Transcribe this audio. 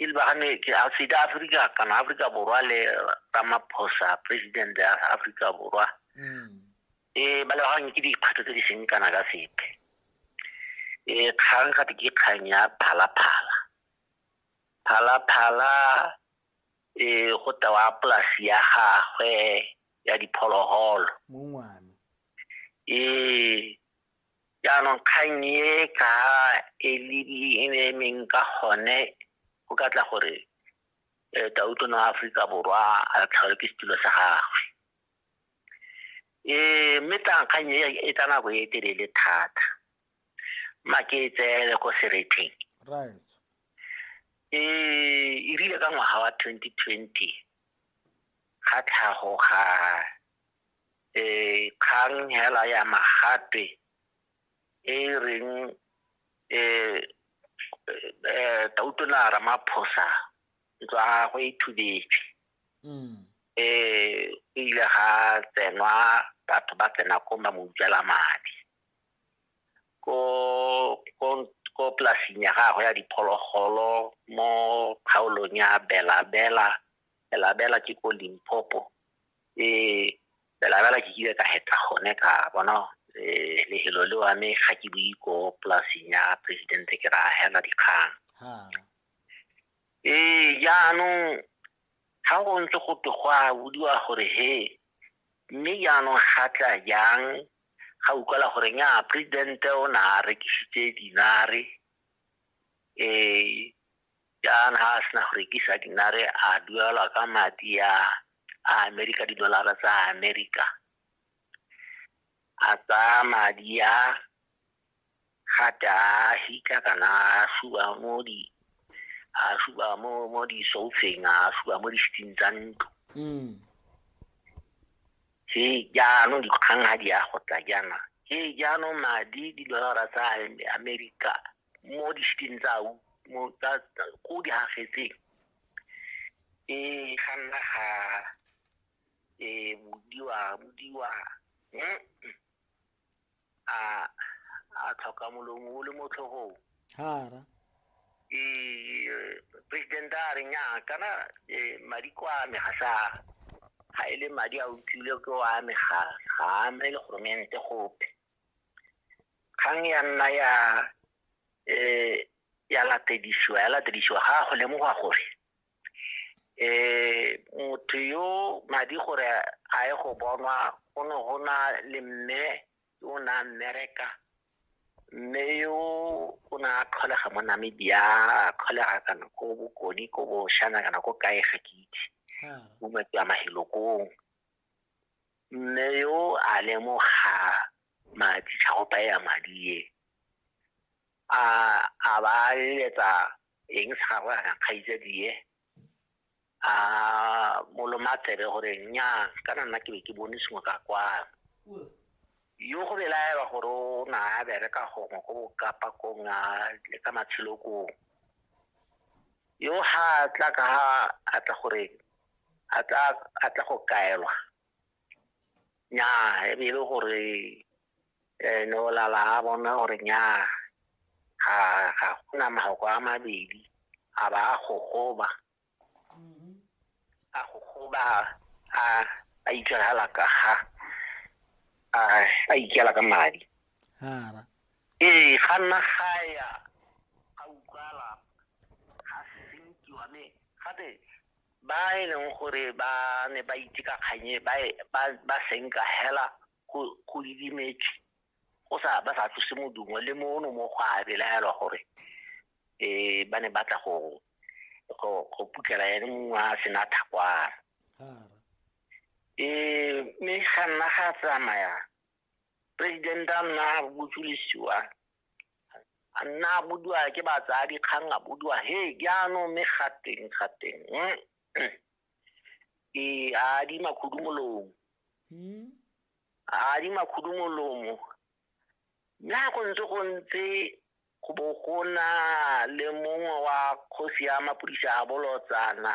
e lebagane ke Afrika Afrika kana Afrika Borwa le Ramaphosa president ya Afrika Borwa mm. e ba lebagane ke dikgwetlho tse di seng kana ka sepe e kgang gape ke kgang ya phalaphala phalaphala e go tewa polasi ya gagwe ya diphologolo ee Jaanong kgang e ka e le e emeng ka gone go ka tla gore eh, tauto no aforika borwa a tlhaole ke setulo sa gagwe um mme tlankgang e e tsa nako e telele thata ma ke e tseele ko seretheng right e e rile ka ngwaga wa 2020 ga tlhago ga kgang hela ya magape e e reng um tautona ramaphosa ntlo ya gagwe e thubetse um ile ga tsenwa batho ba tsena ko ba mo utswela madi ko polasing ya gagwe ya diphologolo mo kgaolong ya belabela belabela ke ko limpopo eh bela bela ke kile ka heta gone ka bona eh lehelo le wa me ga ke bue ko polaseng ya presidente ke ra hela dikgang ee jaanong ga go ntse go te go a bodiwa gore he mme jaanong ga tla jang ga utlwala gore nya presidente o ne a rekisitse dinare um jaana ga a sena go rekisa dinare a duelwa ka madi a a amerika didolara tsa amerika a tsaya madi a gate a hika kana a suba mo di a suba mo mo di soufeng a suba mo di sting tsa ntlo mm. se jaanong dikgang ga di ya go tla jaana ke jaanong madi didolara tsa amerika mo dishiteng tsao mo tsa ko di hafetseng e ga nna ga e budiwa budiwa a a tlhoka molomo o le mo tlhogong hara e president a re nya kana madi kwa me ga sa ga e le madi a utlwile ke wa me ga ga me le goromente gope kgang ya nna ya um ya latedisiwa ya latedisiwa ga go lemoga gore um motho yo madi gore a ye go bonwa go ne go na le mme yo o ne a mmereka mme yo o ne a tlholega mo namibia a tlholega kana ko bokoni ko boshana kana ko kae ga ke itse mo matswa mahilokong Mme yo a lemoga madi tlhagopa ya madi e a a ba eletsa eng sa gagwe a kgaitsadie a moloma tsebe gore nya kana nna ke be ke bone sengwe ka kwano yo go belaelwa gore o na a bereka gongwe go bokapa kong a le ka matshelo kong yo ga tla ka a tla gore a tla a tla go kaelwa nyaa e be e le gore eh, ne o lala a bona gore nyaa ga ga gona mahoko a mabedi a ba a gogoba a gogoba a a itshegela ka ga a a ikela ka madi hara ee ga nna ga ya ga utlwala ga sentiwa me gape ba e leng gore ba ne ba itse ka kganye ba e, ba senka hela go didimetse go sa ba sa tlose modumo le mono mo go a belaelwa gore um ba ne ba tla go go putlela ene mongwe a sena thakwara um mme ga nna ga tsamaya president a nna a botsolisiwa a nna a bodiwa ke batsadi kgang a bodiwa he jaanong mme gateng gateng mm, mm. ke a adima khudu molomo hmm? a adima khudu molomo mme ga go ntse go ntse go bo go na le mongwe wa kgosi ya mapodisa a bolotsana